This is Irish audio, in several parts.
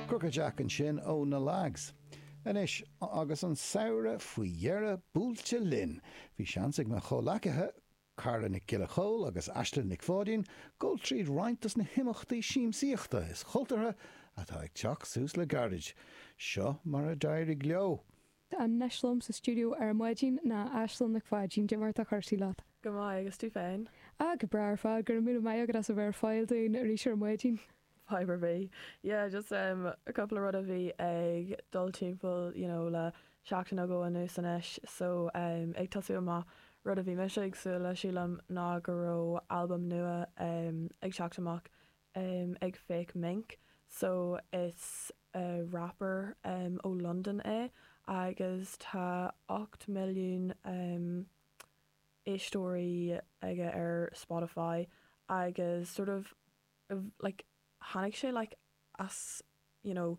Crooked Jack ansin ó na Lags. Anois, agus an samhradh faoi dheireadh buailte linn, bhí seans ag mo chomhleacaithe, Cara Nic Giolla Chomhaill agus Aislinn Nic Pháidín, dul tríd roinnt dos na himeachtaí siamsaíochta is chultúrtha atá ag teacht suas le gairid. Seo mar a d'éirigh leo. Anois liom sa stiúideo ar maidin ná Aislinn Nic Pháidín. Cad é mar atá cúrsaí leat? Go maith, agus tú féin? Ah, go breá ar fad, go raibh míle maith agat as a bheith ar fáil dúinn arís ar maidin. Fadhb ar bith. Yeah, just em cúpla rud a bhí ag dul timpeall you know le seachtain nó dhó anuas anois so em ag tosú amach rud a bhí mise ag súil leis sílim ná go raibh albam nua em ag teacht amach em ag Fakemink so is eh rapper em ó Londain é agus tá ocht milliún em éisteoirí aige ar Spotify agus sort of bh like tháinig sé like as you know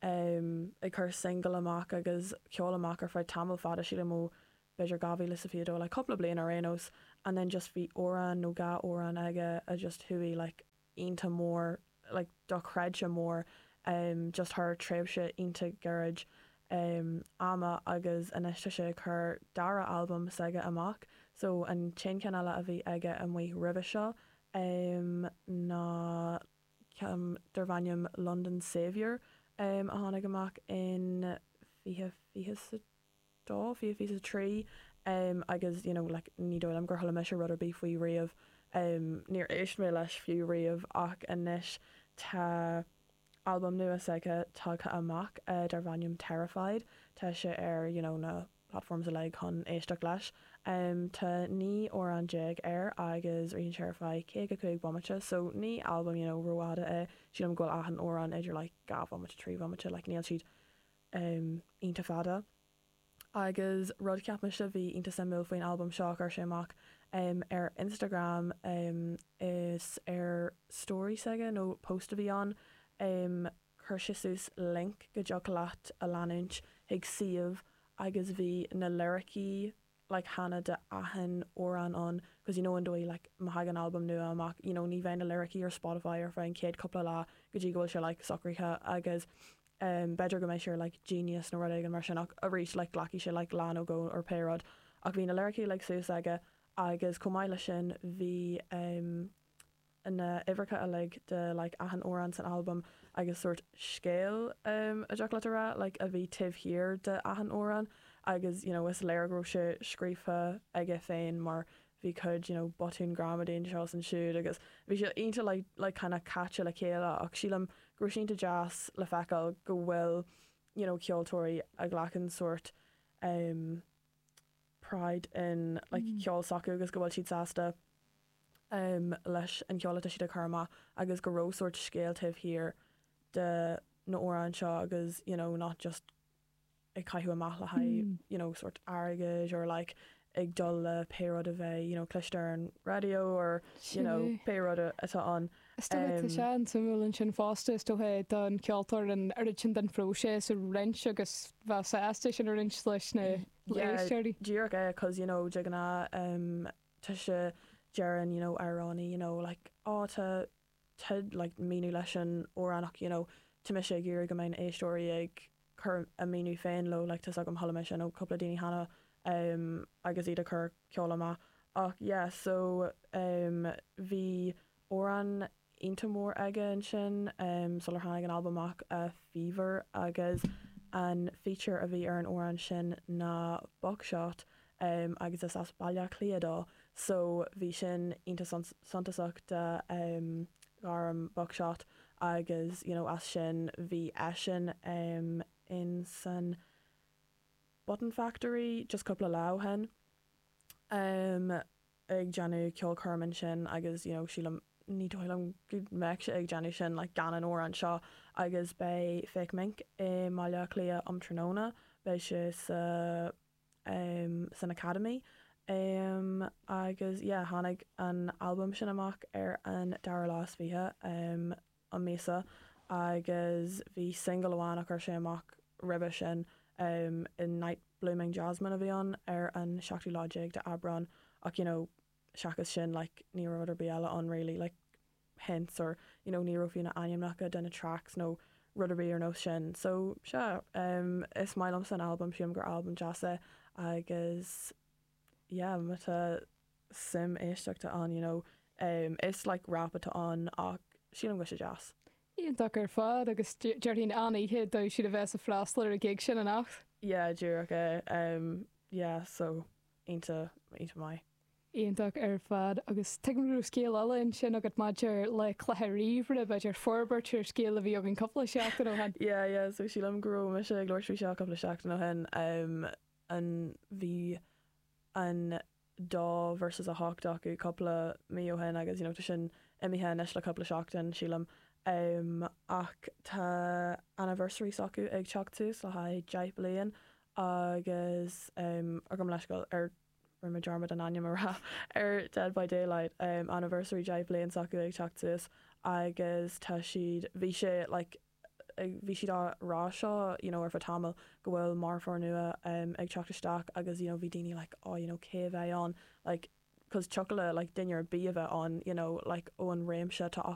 em ag cur single amach agus ceol amach ar feadh tamall fada sílim ó b'fhéidir dhá mhíle sa fiche dó like cúpla bliain ar aon nós and then just bhí amhrán nó dhá amhrán aige a just chuaigh like iontach mór like dochreidte mór em just thar tréimhse iontach gairid em ama agus anois tá sé ag cur dara albam s'aige amach so an t-aon cheann eile a bhí aige amuigh roimhe seo em ná ceann darb ainm London's Saviour em a tháinig amach in fiche fiche sa 2023 agus you know like ní dóigh liom gur chuala mise rud ar bith faoi riamh, níor éist mé leis fiú riamh ach anois tá albam nua s'aige tagtha amach darb ainm Terrified, tá sé ar you know na platforms uilig chun éisteacht leis. Tá 19 amhrán air agus ritheann sé ar feadh 55 bomaite so ní albam you know rófhada é, sílim go bhfuil achan amhrán idir like dhá bhomaite, trí bhomaite like níl siad um iontach fada. Agus rud a cheap mise bhí iontach suimiúil faoin albam seo a chuir sé amach um ar Instagram um is ar story s'aige nó post a bhí ann um chuir sé suas link go dtiocfadh leat a leanúint chuig suíomh agus bhí na liricí like cheana de achan amhrán ann cause you know an dóigh like má thagann albam nua amach you know ní bheidh na liricí ar Spotify ar feadh an chéad cúpla lá go dtí go bhfuil sé like socraithe agus em b'fhéidir go mbeidh sé ar like Genius nó rud éigin mar sin ach arís like glacfaidh sé like lá nó dhó or pé rud ach bhí na liricí like suas aige agus chomh maith leis sin bhí em na huimhreacha uilig do like achan amhrán san albam agus sórt scéal a dtiocfadh leat a rá like a bhí taobh thiar d'achan amhrán agus you know is léir go raibh sé scríofa aige féin mar bhí cuid you know botún gramadaí anseo is ansiúd agus bhí sé iontach like like kind of caite le chéile ach sílim go raibh sé iontach deas le feiceáil go bhfuil you know ceoltóirí a ghlacann sórt um pride in like ceol s'acu agus go bhfuil siad sásta em leis an cheol atá siad ag cur amach agus go raibh sórt scéal taobh thiar de na amhráin seo agus you know not just ag caitheamh amach le haghaidh you know sórt airgid or like ag dul le pé rud a bheadh you know cloiste ar an radio or you know pé rud atá ann Is dócha tá sé an-suimiúil ansin fosta, is dócha don cheoltóir an oiread sin den phróiseas a roinnt agus bheith sásta sin a roinnt leis na éisteoirí. Díreach é, 'cause you know de ghnáth tá sé, deireann you know amhránaithe you know like á tá, tá like míniú leis an amhrán ach you know tá mise ag iarraidh go mbeidh na éisteoirí ag cur a míniú féin leo like tá's agam chuala mise you know cúpla daoine cheana agus iad ag cur ceol amach ach yeah so bhí amhrán iontach mór aige ansin sular tháinig an albam amach, Fever, agus an feature a bhí ar an amhrán sin ná Buckshot agus is as Baile Átha Cliath dó so bhí sin iontach suntasach do ghairm Buckshot agus you know as sin bhí eisean in san Button Factory just cúpla lá ó shin. ag déanamh ceolchoirm ansin agus you know sílim, ní dóigh liom go mbeadh sé ag déanamh sin like gan an amhrán seo agus beidh Fakemink i mBaile Átha Cliath um tráthnóna, beidh sé sa em san Academy em agus yeah tháinig an albam sin amach ar an dara lá is fiche em an míosa agus bhí singil amháin a chuir sé amach roimhe sin in Night Blooming Jasmine a bhí ann ar an seachtú lá déag d'Aibreán ach you know seachas sin like ní raibh rud ar bith eile ann really like hints or you know ní raibh fiú na ainmneacha de na tracks nó rud ar bith ar nós sin so sea is maith liomsa an albam sílim gur albam deas é agus yeah má tá suim éisteacht ann you know em is like rap atá ann ach sílim go bhfuil sé deas. Iontach ar fad agus déarfainn an-oíche dóibh siúd a bheas ag freastal ar an gig sin anocht. Yeah díreach é em yeah so iontach iontach maith. Iontach ar fad agus tuigim go raibh scéal eile ansin agat maidir le cluiche ríomhaire, b'fhéidir forbairt ar scéal a bhí againn cúpla seachtain ó shin. Yeah yeah so sílim go raibh mise ag labhairt faoi seo cúpla seachtain ó shin em bhí an dá versus a hocht acu, cupla mí ó shin agus you know tá sin imithe anois le cupla seachtain, sílim. Ach tá anniversary s'acu ag teacht suas le haghaidh deich bliain agus gabhaim leithscéal rinne mé dearmad an ainm a rá ar Dead by Daylight anniversary deich bliain s'acu ag teacht suas agus tá siad bhí sé like bhí siad á rá seo you know ar feadh tamaill go bhfuil marfóir nua em ag teacht isteach agus you know bhí daoine like oh you know cé a bheidh ann like cause tiocfadh le like duine ar bith a bheith ann you know like ón réimse atá acu